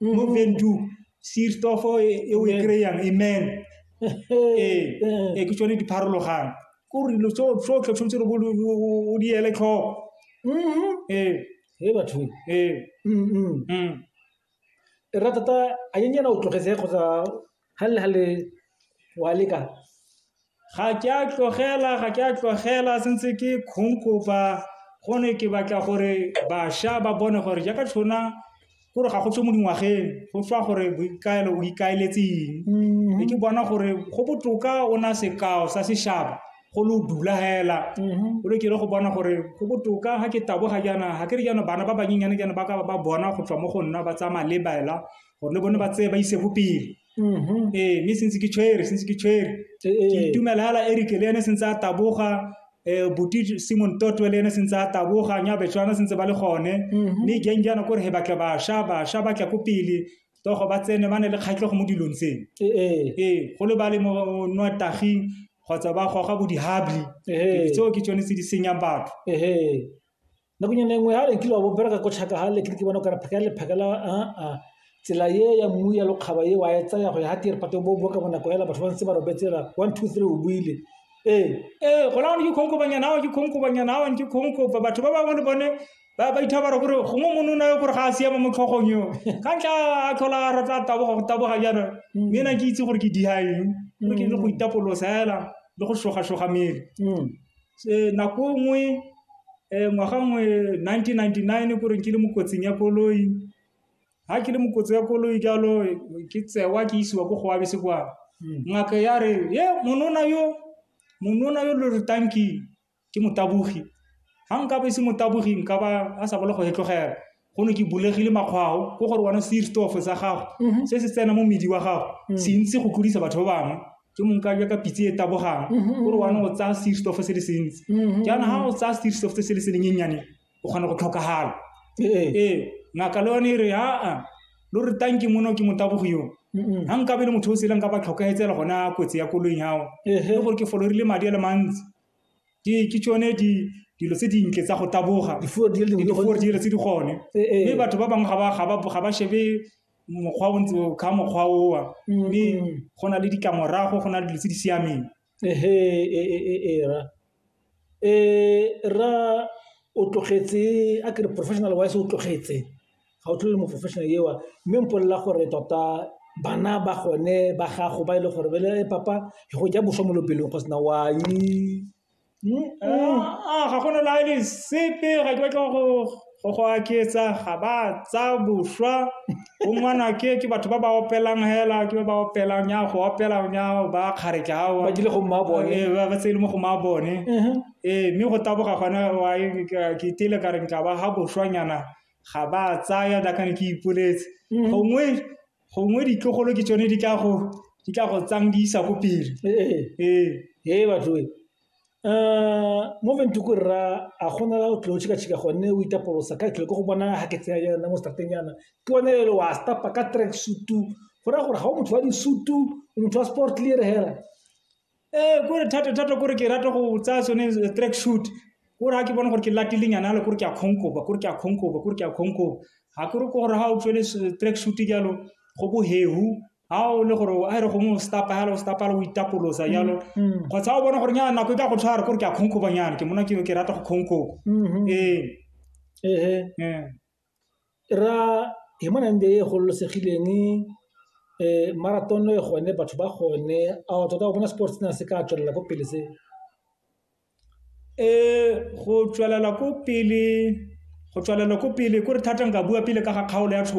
mo vendu sirtofo e e o e Amen. kry-ang amen ee Eh, ee, ke tsone di pharologang ke gore dilo tso- tsotlhe tshwanetse re bo lo- o- o- o di ele tlhoko mhm. ee He batho ee Mm, mm. mm. e rata ta a nyenyana o tlogetse kgotsa ga le ga le wa leka ga ke a tlogela ga ke a tlogela sentse ke kgongkopa go ne ke batla gore bašwa ba bone gore jaaka tshona gore ga go tswe mo dingwageng go tswa gore boikaelo o ikaeletseng mm-hmm. e ke bona gore go botoka o na sekao sa sešaba go lo dula hela mm-hmm. o le kere go bona gore go botoka ga ke taboga jaana ga ke re jaana bana ba banyenyane jaana ba ka ba bona go tswa mo go nna ba tsamaya le baela gore le bone ba tseye ba ise ko pele Mhm. ee mme sentse ke tshwere sentse ke tshwere Eh, eh. ke itumela fela erike le ene sentse a taboga um buti simon totwe le ene sentse a taboga nyabetswana sentse ba le gone Mhm. mme jang jaana kore he batle basha basha batla ko pele togo ba tsene ba ne le kgatlhego mo dilong tseno Eh, eh. ee go le ba le mo nwa taging kgotsa ba goga bo dihabli Eh. tseo ke tsone tse di senyang batho Eh, eh. Nakonyana e nngwe ha re nkile wa bobereka ko tšhaka ga le ke bona kare pheka le phekela aa tsela ye ya mmu ya lokgaba ye wa e tsaya go ya ga tee re pate bo boka bonako ela batho ba ntse ba robetsela one two three o buile ee ee gona gone ke kgonkobanyana ao ke kgonkobanyana ao ke kgonkopa batho ba bangwe le bone ba ba itha bara gore gongwe mone o na yo gore ga a siama mo tlhogong yo ka ntla a tlhola a rata taboga go taboga jaana mme ena ke itse gore ke dihaeng ke le go itapolosa fela le go shoga shoga mmele Nako nngwe ngwaga nngwe nineteen ninety-nine ko reng ke le mo kotsing ya koloi, ha ke le mo kotsi ya koloi jalo ke tsewa ke isiwa ko go wa besekwane. Ngaka ya re ye monona yo, monona yo lo re tlang ke ke motabogi, ha nka ba e se motabogi nka ba a sa bolo go e tlogela. go ne ke bulegile makgwao ko gore wena seerstofo sa gago mhm. se se tsena mo medi wa gago mhm. se ntse go tlodisa batho ba bangwe ke mong ka jaka pitse e tabogang mhm, gore wena o tsaya seerstofo se le se ntsi jaana ga o tsaya seerstofo se se le se lenyennyane o kgona go tlhokagala ee, ee ngaka le yone e re aa lo re tanke mono ke motabogo yo ga nkabe le motho o sele nka ba tlhokagetsela gona kotsi ya koloing gago le gore ke folorile madi a le mantsi ke ke tsone di dilo tse dintle tsa go taboga difuo di le dingwe di gore dilo tse di gone Eh, eh. mme batho ba bangwe ga ba- ga ba ga ba shebe mokgwa o ntse o- ka mokgwa owa Mm, mme mm. go na le ditlamorago go na le dilo tse di siameng ehe e e e e ra e ra o tlogetse a ke re professional wise o tlogetse ga o tlhole mo-professional eo mme mpolelela gore tota bana ba gone ba gago ba e le gore bele papa go ja boswa mo lopelong go sena wa ga gona la le sepe ga ke batla go go go aketsa ga ba tsa boswa o ngwana ke ke batho ba ba opelang hela ke ba ba opelang ya go opela ya ba kgaretla ao ba dile go mma bone ba ba tsele mo go mma bone ee mme go taboga gona wa ke tile ka re ntla ba ha boswanyana ga ba tsaya jaaka ne ke ipoletse. Mm. Gongwe, gongwe ditlogolo ke tsone di tla go di tla go tsang di isa ko pele. Ee. Ee batho e. Uh, mo ventuku rra a gona la o tlo tshika tshika gone o itapolosa ka tlhole go bona ha ke tsaya yana mo starteng yana ke one le wa stapa ka track suit go ra gore ga o motho wa di suit o motho wa sport le re hera ee eh, kore thata thata kore ke rata go tsaya sone eh, track shoot kore ga ke bone gore ke latilenyana ale kore ke a kgonkoba kore ke a kgonkoba kore ke a kgonkoba ga kore ko gore ga o tswele eh, track shoot jalo go bohehu ga o le gore a e re gongwe o stapa jalo o stapa jalo o itapolosa mm, jalo mm. kgotsa o bone gore nyana nako e ka go tshwara kore ke a kgonkoba nyana ke mona ke rata go kgonkoba mm-hmm. ee E ra e e gololosegileng marathon e gone batho ba gone a o tota o bona sports sena se ka tswelela ko pele se? Go tswelela ko pele kore thata nka bua pele ka ga kgaolo ya .